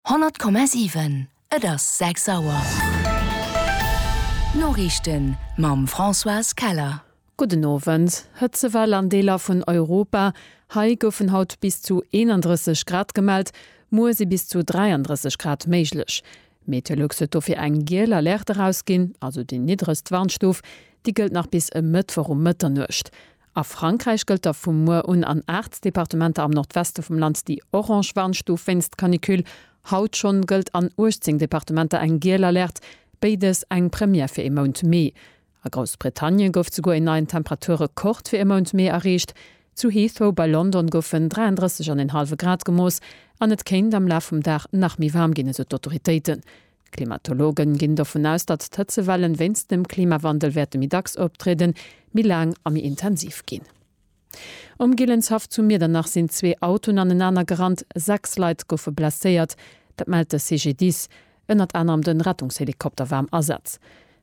100,7 Et ass 6 Auer. D'Noriichten mam Françoise Keller. Gudden Owend. Hëtzewell an Deeler vun Europa, Hei goufen haut bis zu 31 Grad gemellt, muer si bis zu 33 Grad méiglech. Meteolux huet dofir eng giel Alerte erausginn, also déi niddregst Warnstuf, déi gëllt nach bis e Mëttwoch um Mëtternuecht. A Frankräich gëllt da vu muer un an 8 Departementer am Nordweste vum Land déi orange Warnstuf wéinst Canicule. Haut schonn gëllt an 18 Departementer eng giel Alerte, béides eng Première fir ee Mount Mee. A Groussbritannien gouf souguer een neien Temperaturrekord fir e Mount Mee erreecht. Zu Heathrow bei London goufen 33 an en hallwe Grad gemooss an et kéint am Laf vum Dag nach méi waarm ginn, esou d'Autoritéiten. D'Klimatologen ginn dovun aus, datt d'Hëtzewellen wéinst dem Klimawandel wäerte méi dacks optrieden, méi laang a méi intensiv ginn. Um Gillenshaff zu Miedernach sinn zwee Autoen anenaner gerannt, sechs Leit goufe blesséiert. Dat mellt de CGDIS. Ënnert anerem de Rettungshelikopter war am Asaz.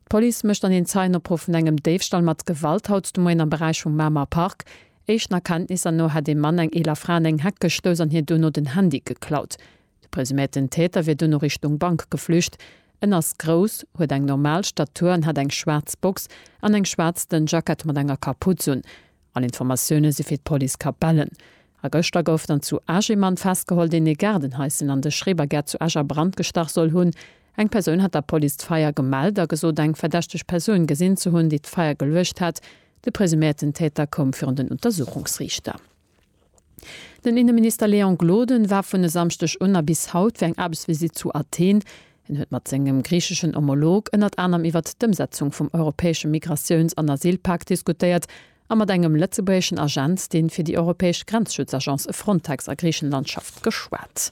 D'Police mécht an een Zeienopruff vun engem Déifstall mat Gewalt haut de Moien am Beräich vum Mamer Park. Éischten Erkenntnisser no hätt ee Mann eng eeler Fra an eng Heck gestouss an hir dono den Handy geklaut. De presuméierten Täter wier duerno Richtung Bank geflücht. En ass grouss, huet eng normal Statur an hat eng schwaarz Box an eng schwaarz dënn Jackett mat enger Kaputz un. All Informatioune si fir d'Police Capellen. A gëschter gouf dann zu Esch ee Mann festgeholl, deen ee Gaardenhais, deen an de Schrebergäert zu Esch a Brand gestach soll hunn. Eng Persoun hat der Police d'Feier gemellt a gesot, eng verdächteg Persoun gesinn ze hunn, déi d'Feier geluecht hätt. De presuméierten Täter koum virun den Untersuchungsriichter. Den Inneminister Léon Gloden war vun e Samschdeg un a bis haut fir eng Aarbechtsvisitt zu Athen. Hien huet mat sengem griicheschen Homolog ënnert anerem iwwert d'Ëmsetzung vum europäesche Migratiouns an Asylpak diskutéiert a mat engem lëtzebuergeschen Agent, dee fir déi europäesch Grenzschutzagence Frontex a Griichenland schafft, geschwat.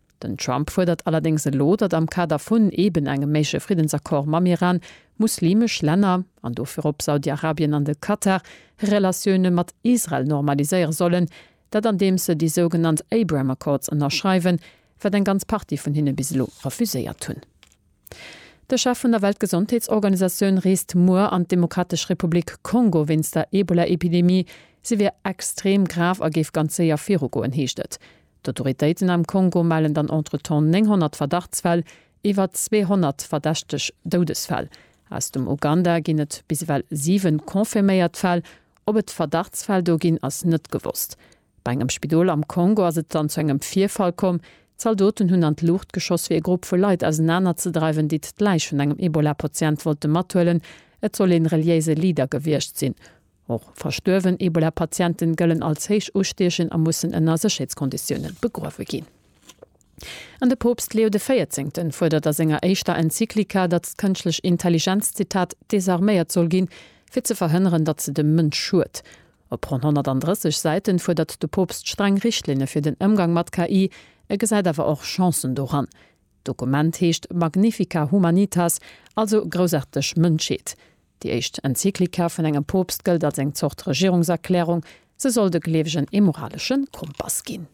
Den Trump fuerdert allerdéngs elo, datt am Kader vun eben engem méigleche Friddensaccord mam Iran, muslimesch Länner, an do virop Saudi-Arabien an de Katar, hir Relatioune mat Israel normaliséiere sollen, dat andeems se déi sougenannt Abraham Accords ënnerschreiwen, wat eng ganz Partie vun hinne bis elo refuséiert hunn. De Chef vun der Weltgesondheetsorganisatioun reest muer an d'Demokratesch Republik Kongo wéinst der Ebola-Epidemie. Si wier extrem grav a géif ganz séier virugoen, heescht et. D'Autoritéiten am Kongo mellen dann entretemps 900 Verdachtsfäll, iwwer 200 verdächteg Doudesfäll. Aus dem Uganda ginn et bis ewell siwe confirméiert Fäll. Ob et Verdachtsfäll do ginn, ass net gewosst. Bei engem Spidol am Kongo ass et dann zu engem Virfall komm. Zaldoten hunn an d'Luucht geschoss, fir ee Grupp vu Leit ausenanerzedreiwen, déi d'Läich vun engem Ebola-Patient wollte mathuelen. Et soll ee reliéise Leader gewiescht sinn. Och verstuerwen Ebola-Patienten gëllen als héich ustiechend a mussen ënner Sécherheetskonditiounen begruewe ginn. An de Poopst Leo de Véierzéngten fuerdert a senger éischter Enzyklika, datt d'kënschtlech Intelligenz, Zitat, desarméiert soll ginn, fir ze verhënneren, datt se dem Mënsch schued. Op ronn 130 Säiten fuerdert de Poopst streng Richtlinne fir den Ëmgang mat KI. E gesäit awer och Chancen doran. D'Dokument heescht Magnifica Humanitas, also Groussaarteg Mënschheet. Déi éischt Enzyklika vun engem Poopst gëllt als eng Zort Regierungserklärung. Se soll de Gleewegen ee moralesche Kompass ginn.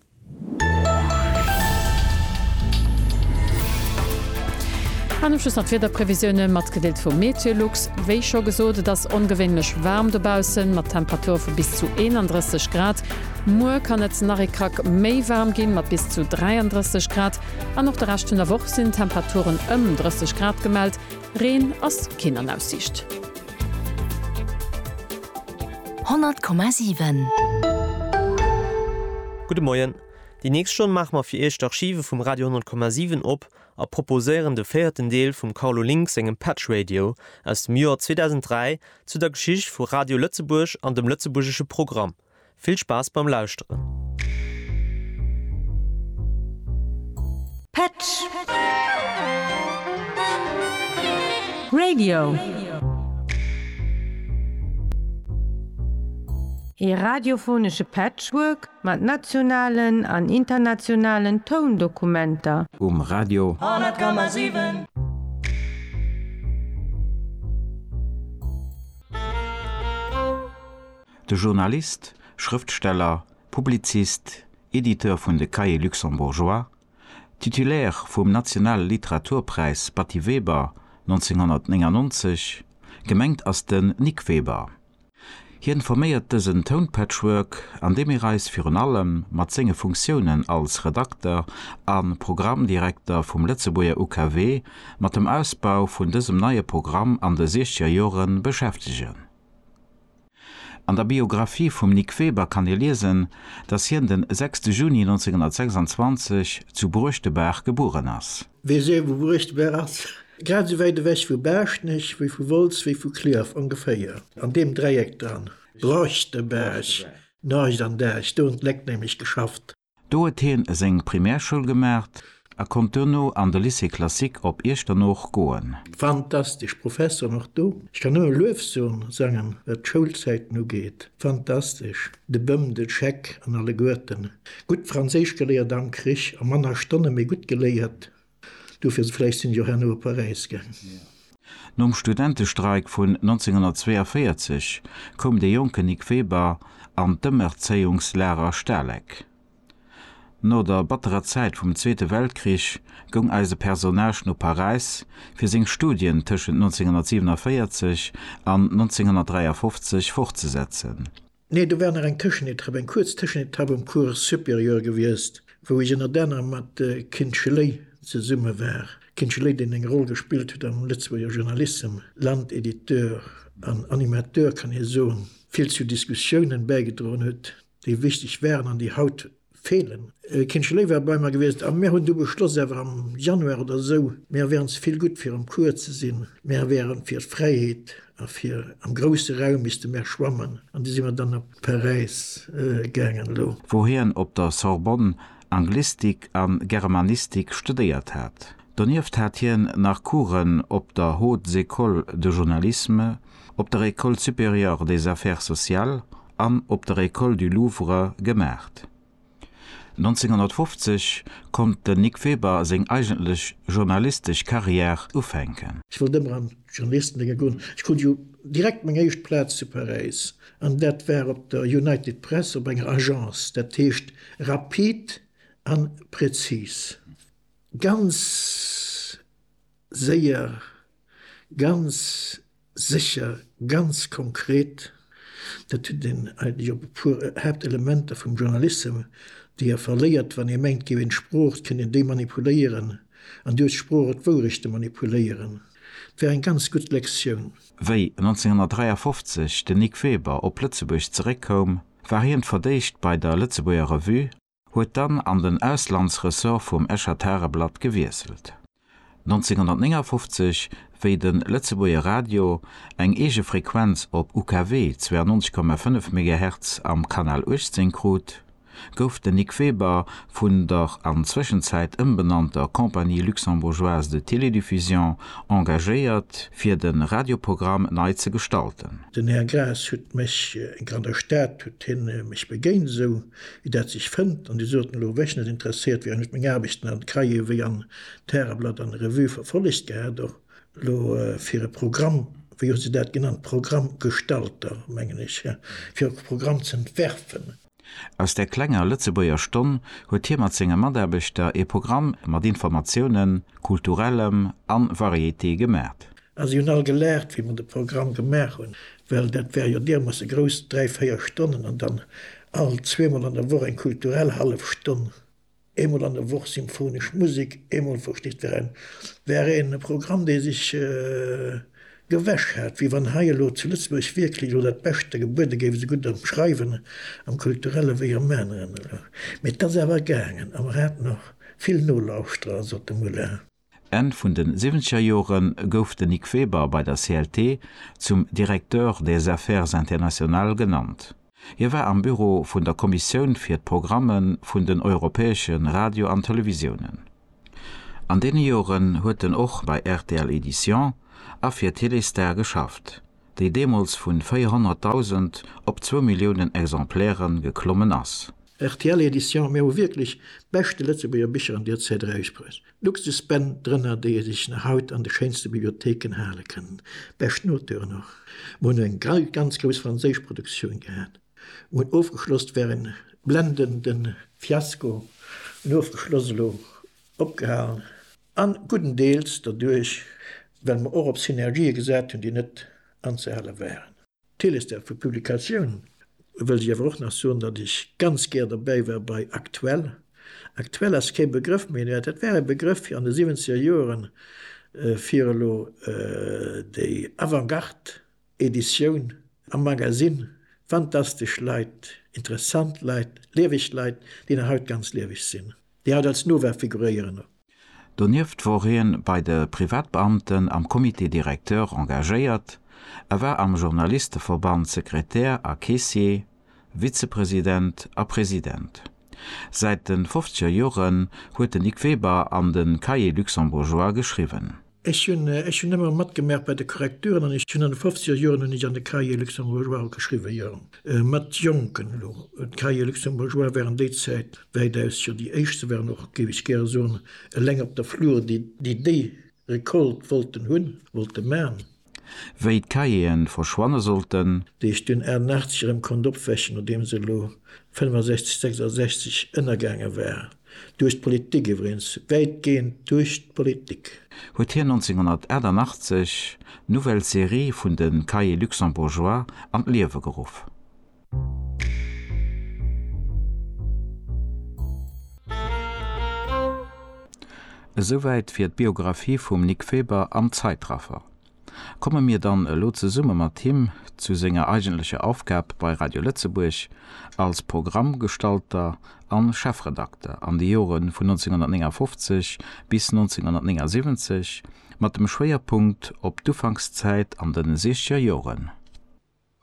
An um Schluss nach d'Wiederprevisioune matgedeelt vu MeteoLux. Wéi scho gesot, et ass ongewéinlech waarm dobaussen, mat Temperature vu bis zu 31 Grad. Muer kann et nach ee Krack méi waarm ginn, mat bis zu 33 Grad. An och de Rescht vun der Woch sinn Temperaturen ëm 30 Grad gemellt, Reen ass keen an Aussiicht. 100,7. Gudde Moien. Déi nächst Stonn maache mer fir Iech d'Archive vum Radio 100,7 op a proposéieren de véierten Deel vum Carlo Link sengem Patch Radio aus dem Joer 2003 zu der Geschicht vu Radio Lëtzebuerg an dem lëtzebuergesche Programm. Vill Spaass beim Lauschteren! Petsch! Radio! Ee radiophonesche Patchwork mat nationalen an internationalen Toundokumenter. Um Radio! 100,7. De Journalist, Schrëftsteller, Publizist, Editeur vun de Cahiers luxembourgeois, Titulaire vum Nationale Literaturpräis Batty Weber 1999, gemengt ass den Nic Weber. Hien forméiert dësen Tounpatchwork, an deem mir eis virun allem mat senge Funktiounen als Redakter a Programmdirekter vum Lëtzebuerger UKW mat dem Ausbau vun dësem neie Programm an de Siechzgerjore beschäftegen. An der Biographie vum Nic Weber kann ee liesen, datt hien den 6 Juni 1926 zu Bruechtebaach gebueren ass. Weess ee wou Bruechtebaach ass? Grad esou wäit ewech vu Baaschtnech wéi vu Wolz wéi vu Clierf ongeféier, an deem Dräieck dran. Bruechtebaach, Norgescht an Däech, do hunn d'Léck nämlech geschafft. Do huet hien seng Primärschoul gemaacht a konnt duerno an de Lycée Classique op Iechternooch goen. Fantastesch Professoren och do. Ech kann nëmme Luefsoen sangen wat d'Schoulzäiten ugeet. Fantastesch, de Bëm, de Scheck an alleguerten. Gutt Franséisch geléiert am Krich a manner Stonne mee gutt geléiert. Dofir vläicht sinn jo herno op Paräis gaang. Nom Studentestreik vun 1942 koum de jonken Nic Weber an d'Ëmerzéiungslager Stalek. No der batterer Zäit vum Zweete Weltkrich goung eise Personnage no Paräis fir seng Studien tëschent 1947 an 1953 fortzesetzen. Nee, do war nach eng Tëschenetapp, eng kuerz Tëschenetapp um Cours supérieur gewiescht, wou ech ënnert anerem mat Kin Schley zesumme war. Kin Schley, deen eng Roll gespillt huet am Lëtzebuerger Journalissem, Landediteur an Animateur kann ee soen, vill zu Diskussiounen bäigedroen huet, déi wichteg waren an déi haut Feelen. Kindche Léiwer bei mer gewiescht a mir hunn du beschloss awer am Januar oder esou, mir wären ze vill gutt fir am Cours ze sinn, mir wären fir d'Fräiheet a fir am grousse Raum misste mer schwammen an du si mer dann op Paräis gaangen. Elo. Wou hien op der Sorbonne Anglistik a Germanistik studéiert hat. Donieft hat hien nach Coursen op der Haute Ecole de Journalisme op der École supérieure des Affaires sociales an op der École du Louvre gemaacht. 1950 konnt den Nic Weber seng eigentlech journalistesch Carrière ufänken. Ech wollt ëmmer an d'Journalistendénge goen. Ech krut jo direkt meng éischt Plaz zu Paräis, an dat war op der United Press op enger Agence, dat heescht rapid a prezis. Ganz séier Ganz sécher, ganz konkret, dat hutt een eigentlech op e puer Haaptelementer vum Journalissem, déi e verléiert, wann ee mengt, géif een d'Sprooch kënnen demanipuléieren, an duerch d'Sprooch och d'Wourechte manipuléieren. Et war eng ganz gutt Lektioun. Wéi 1953 den Nic Weber op Lëtzebuerg zeréckkoum, war hien fir d'éischt bei der Lëtzebuerger Revue, huet dann an den Auslandsressort vum Escher Tageblatt gewiesselt. 1959, wéi de Lëtzebuerger Radio eng eege Frequenz op UKW 92,5 Megahertz am Kanal 18 krut, gouf den Nic Weber vun der an Zwëschenzäit ëmbenannter Compagnie luxembourgeoise de télédiffusion engagéiert, fir de Radioprogramm nei ze gestalten. Den Här Graas huet mech, eng granner Stad huet hien mech begéint, esou Wéi dat sech fënnt, an déi soten elo wech net interesséiert wieren, huet meng Aarbecht dann an d'Cahiers wéi an d'Häreblatt an d'Revue verfollegt gehat. Och elo fir e Programm, wéi hu se dat genannt, Programmgestalter, mengen ech, fir och e Programm z'entwerfen. Aus där klenger Lëtzebuerger Stonn huet hie mat senge Mataarbechter e Programm mat Informatiounen, Kulturellem a Variété gemat. A si hunn all gelaacht, wéi mer de Programm gemaach hunn, well dat war jo diermoosse grouss, dräi, véier Stonnen an dann all zweemol an der Woch eng kulturell hallef Stonn, eemol an der Woch symphonesch Musek, eemol, versteet Dir, en war e Programm, dee sech gewäsch hat, wéi wann hei elo zu Lëtzebuerg wierklech elo dat Beschte gebuede géif, esou gutt am Schreiwen, am Kulturelle wéi am aneren elo. Mee et ass awer gaangen a mer haten och vill Nolauschterer, sot de Muller. Enn vun de siwwenzeger Jore gouf de Nic Weber bei der CLT zum Directeur des Affaires internationales genannt. Hie war am Büro vun der Kommissioun fir d'Programme vun den europäesche Radio an Televisiounen. An deene Joren huet en och bei rtl Éditions a fir Téléstar geschafft, déi deemools vu 400.000 op zwou Milliounen Exemplaire geklommen ass. Rtl Éditions, Mir hu wierklech beschte Lëtzebuerger Bicher an Dir zitt Eis Präis. Luxusbänn drënner, déi ee sech nach haut an de schéinste Bibliotheken hale kënnen. Bescht Noteuren och. Mer hunn eng ganz grouss franséisch Produktioun gehat. Mer hunn ofgeschloss, war e blendende Fiasko, hunn ofgeschloss, elo opgehalen, a guddendeels derduerch, well mer och op Synergië gesat hunn, déi net anzehale waren. D'Télé ist därför Publikatioun wëllt ech awer och nach soen, datt ech ganz gär dobäi war bei Aktuell. Aktuell ass kee Begrëff méi, mä dat war e Begrëff fir an de siwwenzeger Joren, fir elo déi Avant-Garde-Editioun am Magasinn, fantastesch Leit, interessant Leit, lieweg Leit, déi nach haut ganz lieweg sinn, déi haut als Nova figuréieren. Donieft wor hien bei de Privatbeamten am Comité directeur engagéiert, a war am Journalisteverband Sekretär a Caissier, Vizepresident a President. Säit den fofzeger Joren huet den Nic Weber an den Cahiers luxembourgeois geschriwwen. Ech hunn ech hunn ëmmer matgemerkt bei de Korrekturen an ech hunn an de fofziger Joren hunn ech an de Cahiers luxembourgeois och geschriwwen, jo, mat Jonken elo. D'Cahiers luxembourgeois waren déi Zäit wäitaus jo déi éischt, se waren och, géif ech gäre soen, eleng op der Flur, déi déi Récolte wollten hunn, wollte man. wéi d'Cahieren verschwanne sollten. Déi ech dunn 88 erëm konnt opwächen, nodeem se elo 65, 66 ënnergaange war, duerch d'Politik iwwregens, wäitgehend duerch d'Politik. Huet hien 1988 d'Nouvelle Série vun de Cahiers luxembourgeois an d'Liewe geruff. Esouwäit fir d'Biographie vum Nic Weber am Zeitraffer. Komme mir dann elo zesumme mat him zu senger eigentlecher Aufgab bei Radio Lëtzebuerg als Programmgestalter a Chefredakter an de Jore vun 1959 bis 1979, mat dem Schwéierpunkt op d'Ufankszäit an de Siechgerjoren.